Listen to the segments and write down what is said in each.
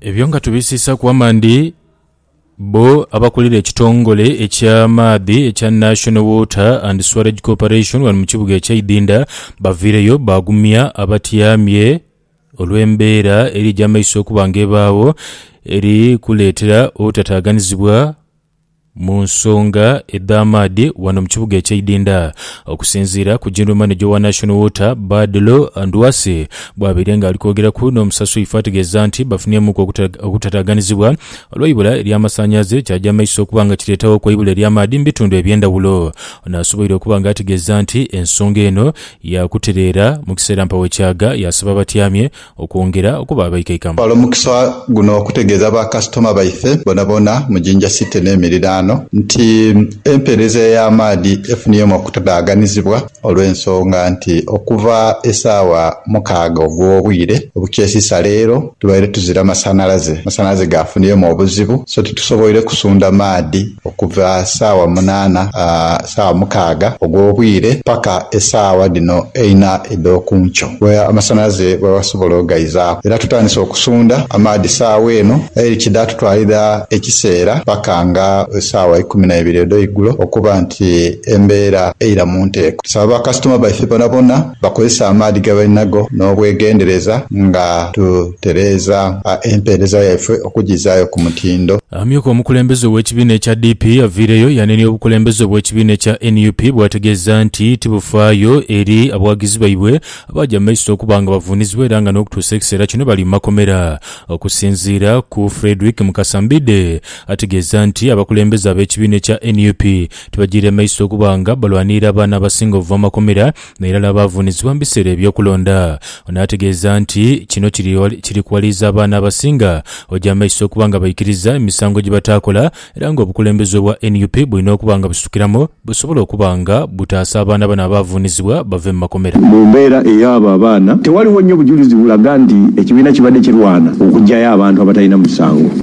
Ebyo nga tubisiisaaku amandi, bbo abakulira ekitongole eky'amaadhi ekya National Water and Swarage Corporation wano mu kibuga eky'Idinda baviireyo baagumya abatyamye olw'embeera eri egy'amaiso okuba nga ebaagho eri kuleetera obutataaganizibwa Mu nsonga edh'amaadhi ghano mu kibuga eky'eidhindha, okusinziira ku General Manager owa National Water, Badlo Ndwase bwabaire nga ali kwogeraku n'omusasi ife ategeeza nti bafunyemuuku okutataaganizibwa olw'eibula ery'amasanhalaze ekyaja mu maiso okuba nga kireetaghoku eibula ery'amaadhi mu bitundu eby'endhawulo. Ono asoboire okuba nga ategeeza nti ensonga eno yaakutereera mu kiseera mpawo ekyaga yaasaba abatyamye okwongera okuba abaikaikamo. Twala omukisa guno okutegeeza ba kasitoma baife boonaboona mu Jinja City n'emiriraano nti empeereza ey'amaadhi efuniemu okutadaaganizibwa olw'ensonga nti okuva esaawa mukaaga ogw'obwire obukyesiisa leero tubaire tuzira masanalaze. Amasanalaze gaafuniemu obuzibu so titusoboire kusunda maadhi. okuva saawa munaana, saawa mukaaga ogw'obwire paka esaawa dhino eina edh'oku nkyo we amasanhalaze we basobola ogaizaaku. Era tutandise okusundha amaadhi saawa eno aye kidha tutwalira ekiseera paka nga saawa ikumi na ibiri edh'eigulo okuba nti embeera eira mu nteeko. Tusaba bakasitoma baife bonabona Bakozesa amaadhi ge bali nago n'obwegendereza nga tutereeza empeereza yaifwe okugizaayo ku mutindo. Amyuka omukulembeze ow'ekibiina ekya DP aviireyo yanenia obukulembeze bw'ekibiina ekya nup bw'ategeeza nti tibufaayo eri abawagizi baibwe abaaja mu maiso okuba nga bavuunizibwa era nga n'okutuusa ekiseera kino bali mu makomera. Okusinziira ku Fredrick Mukasa Mbidde ategeeza nti abakulembeze ab'ekibiina ekya nup Tibajiire maiso okuba nga balwanirira abaana abasinga obuva mu makomera n'irala abaavuunizibwa mu biseera eby'okulonda. Ono ategeeza nti kino kiri kiri kuwaliriza abaana abasinga oja maiso okuba nga baikiriza emisango gye bataakola era nga obukulembeze obwa nup bulina okuba nga busitukiramu busobole okuba nga butaasa abaana bano abaavuunizibwa bave mu makomera. Mu mbeera ey'abo abaana, tewaliwo nnyo bujulizi bulaga nti ekibiina kibadde kirwana okuggyayo abantu abatalina musango.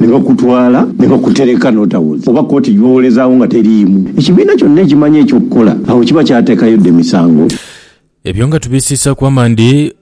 ni bakutwala ni bakutereka n'otawonye oba kooti gy'owolezaagho nga teriimu ekibiina kyonna ekimanya eky'okukola, agho kiba kyateekayo dha emisango. Ebyo nga tubisiisaaku amaani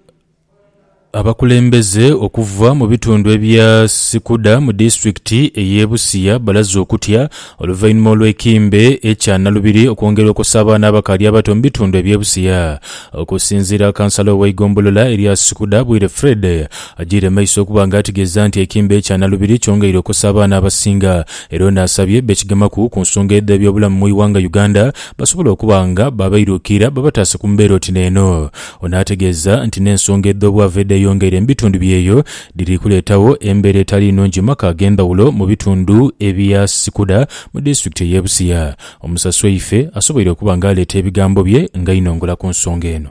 abakulembeze okuva mu bitundu ebya Sikuda mu disitulikiti ey'e Busia balaze okutya oluvainhuma olw'ekimbe ekya nalubiri okwongera okosa abaana abakaali abato mu bitundu eby'e Busia. Okusinziira Kansala ow'eigombolola erya Sikuda Bwire Fred, Agiire maiso okuba nga ategeeza nti ekiimba ekya nalubiri kyongeire okosa abaana abasinga era ono asabye bekigemaku ku nsonga edh'ebyobulamu mu ighanga Uganda basobole okuba nga babairuukiira babataase ku mbeera oti neeno. Ono ategeeza nti n'ensonga edh'obwavu edheyongeire mu bitundu byeyo dhiri kuleetagho embeera etali nnungi mu maka ag'endhawulo mu bitundu ebya Sikudha mu disitulikiti ey'e Busia. Omusasweife asoboire okuba nga aleeta ebigambo bye nga ainongola ku nsonga eno.